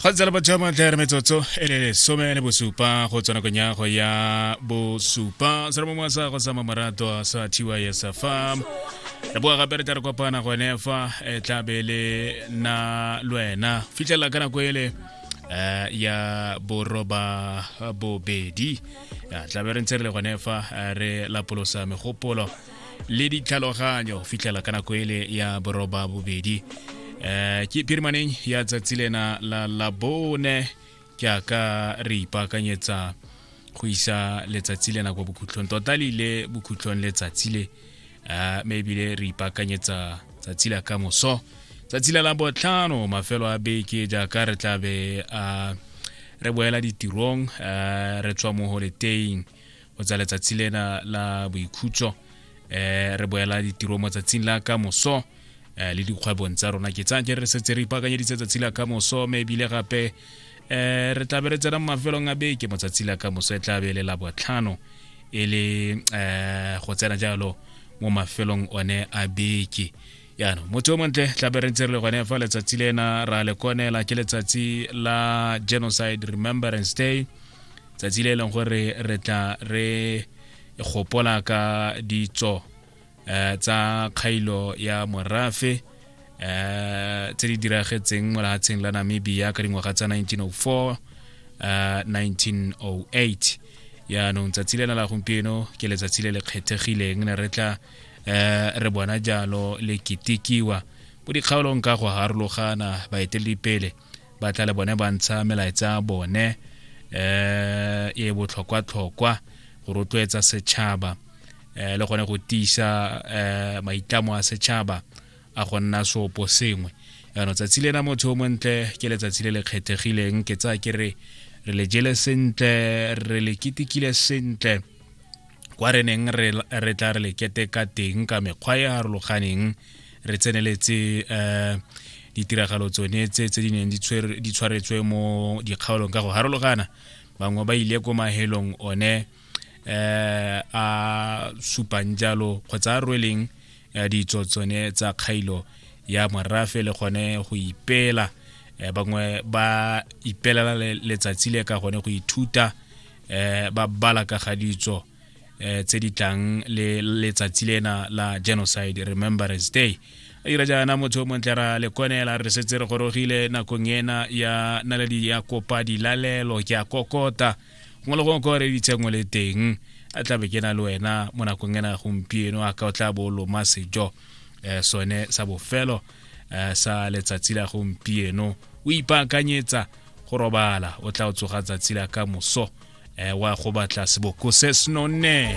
ga tsela ba jama tla re metsotso e le lesome le bosupa go tswa nakong ya go ya bosupa se re mo sa go sa mamaratwa sa tys fa re boa gape re tla re kopana gone fa e tla be le na lwena fitlhelela ka nako ele um ya boroba bobedi tla be re ntse re le gone fa re lapolosa megopolo le ditlhaloganyo fitlhela ka nako ele ya boroba bobedi um ke pirimaneng ya tsatsi lena la labone jaaka re ipaakanyetsa go isa letsatsi lena kwa bokhutlhong tota le ile bokhutlhong letsatsi le um mme ebile re ipaakanyetsa tsatsi la ka moso tsatsi la labotlhano mafelo a beke jaaka re tlabe a re boela ditirong um re tswa mo holeteng go tsa letsatsi lena la boikhutso eh re boela ditiro mo tsatsing la ka moso eh, le dikgwebong tsa rona ke tsaya re setse re ipakanyeditse tsatsi la ka moso mme ebile gape eh re tlabe re tsena mo mafelong a beke mo tsatsi la ka moso e tlabe le la botlhano e le eh go tsena jalo mo mafelong one a beke yana motho o montle tlabe re ntse re le gone fa letsatsi lena ra le konela ke letsatsi la genocide remembrance day tsatsi le e leng gore re tla re gopola ka ditso eh, tsa kgailo ya morafe eh, tse di diragetseng mo lehatsheng la namibia ka dingwaga tsa 1904 eh, 1908 yaanong tsatsi lena la gompieno ke letsatsi le le kgethegileng ne re tla eh re bona jalo le kitikiwa mo dikgaolong ka go harologana baeteledipele ba tla le bone ba ntsha melaetsa ya bone eh e botlhokwa-tlhokwa go rotloetsa setšhaba eh le gone go tiisa eh maitlamo a setšhaba a go nna seopo sengwe yaanong tsatsi lena motho o montle ke letsatsi le le kgethegileng ke tsaya ke re re le jele sentle re le ketekile sentle kwa re neng re tla re lekete ka teng ka mekgwa e harologaneng re tseneletse um ditiragalo tsone tse tse di neng di tshwaretswe mo dikgaolong ka go harologana bangwe ba ile ko mahelong one um a supang jalo kgotsa a rweleng ya ditso tsone tsa kgailo ya morafe le gone go ipela eh, bangwe ba ipelela letsatsi le ka gone go ithuta eh, ba bala ka ga ditso eh, tse di tlang le letsatsi lena la genocide remembrance day a dira jaana motho o montle ra lekonela re setse re gorogile nakong ena ya naledi ya kopa dilalelo ke a kokota gongwe le gongwe ko re ditsengwe le teng a tlabe ke na le wena mo nakong ena gompieno a ka o tla bo loma sejo um sone sa bofelo um sa letsatsi la gompieno o ipaakanyetsa go robala o tla o tsoga tsatsi la ka moso um wa go batla seboko se senonne